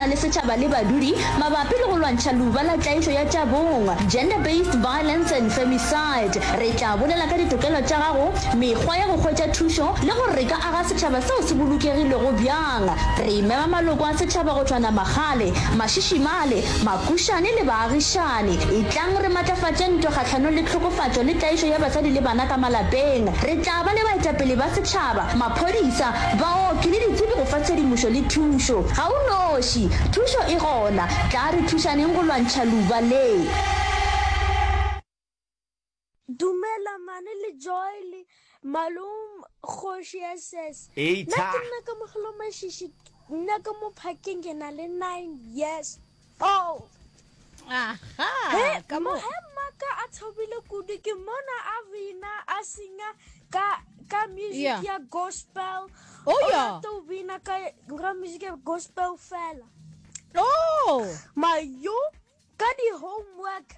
na le setšhaba le badudi mabapi le go lwantšha luba la tlaišo ya tša bong, gender based violence and femicide. Re tla bolela ka ditokelo tša gago, mekgwa ya go hwetša thušo le gore re ka aga setšhaba seo se bolokegilego bjang. Re mema maloko a setšhaba go tšhwana magale, mašišimale, makušane le baagišani. Etlang re matlafatše ntwa kgahlanong le tlhokofatšo le tlaišo ya basadi le bana ka malapeng. Re tla ba le baetapele ba setšhaba, maphodisa, Baoki le ditsebi go fa tshedimošo le thušo. Ga o noši, thušo e gona. Tla re thušaneng go lwantšha luba le. Dumela mane le Joel Malum kgoši SS. Nna ke nna kamogelo mashishi nna ka mo phakeng ke na le nine years. Oh. Aha, hey, ka mo he maka a thobile kudu ke mona a bina a singa ka ka music yeah. ya gospel oh yeah to bina ka ra music ya gospel fela oh mayo ka di homework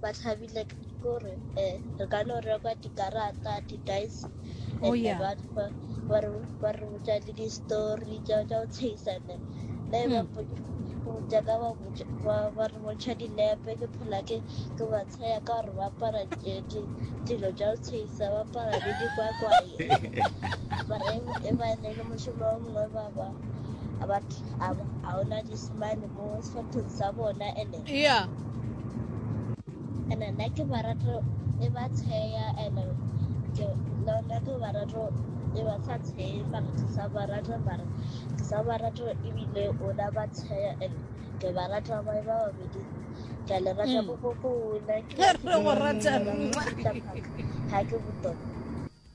ba thabile kore um eh, re ka no rekwa dikarata di-dice oh, and yeah. ba re botsa le di-story tsa go tshegisa ne ne ba hmm. jaaka ba re bontšha dinepe ke phela ke ke ba tshaya ka gore ba apara dilo tsa go tshegisa ba apara le dikwakwaye mara e ba ne le mošomo wa mongwe ba ba a ona disemane yeah nna ke ba rata e ba tsheya and ke lona ke ba rata e ba sa tsheyi mara ke sa ba rata mara ke sa ba rata ebile ona ba tsheya and ke ba rata ba ba babedi ke le rata go go go ona ke go rata ha ke botona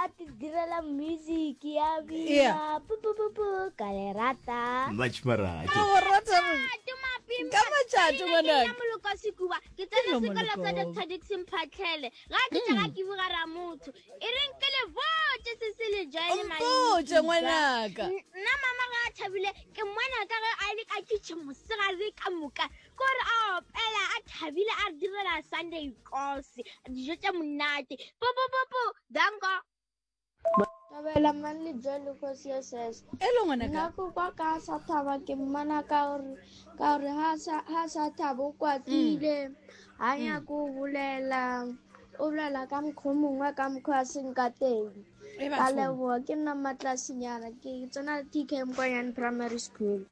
a ti direla music ya bina pupupupu ka le rata much marato o rata ka matšatši ngwanaka moloko sekuba ke tsene sekolo sa dr dixon phatlhele ga ke tsa ga ke buga ra motho e reng ke le botse se se le joele maoje ngwanaka nna mama ga a thabile ke mwana ka ge a le ka kitchen mosegare ka moka kore a opela a thabile a re direla sunday kos dijo tše monate popopopo danko thabela mang le jo le kgosi ya sese e le ngwana ka nako kwa ka sa thaba ke mmana ka gore ka gore ha sa ha sa thabo kwatile mm. ha ya mm. go bolela o bolela ka mokgwa mongwe ka mokgwa a seng ka teng ka leboa ke nna matlasinyana ke tsena tk mkwanyane primary school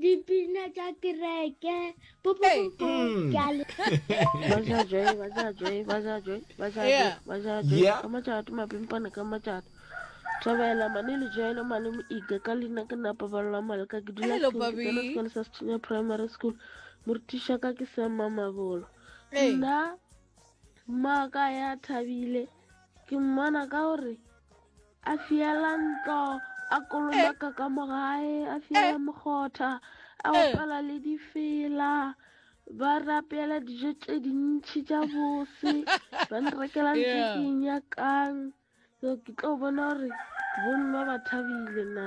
dipina tša kereke thabela mane le joele mane moika ka leina ke napa balwa maleka ke dula sekolo sa sethinya primary school morutiša ka ke semma mabolo nna mmaka ya thabile ke mmona ka gore a fiela ntlo a kolomaka ka mogae a fiela mokgotha a opela le difela ba rapela dijo tše dintšhi tša bose ba nrekela ntse ke nyakang ke tlo bona gore bonnwa ba thabile na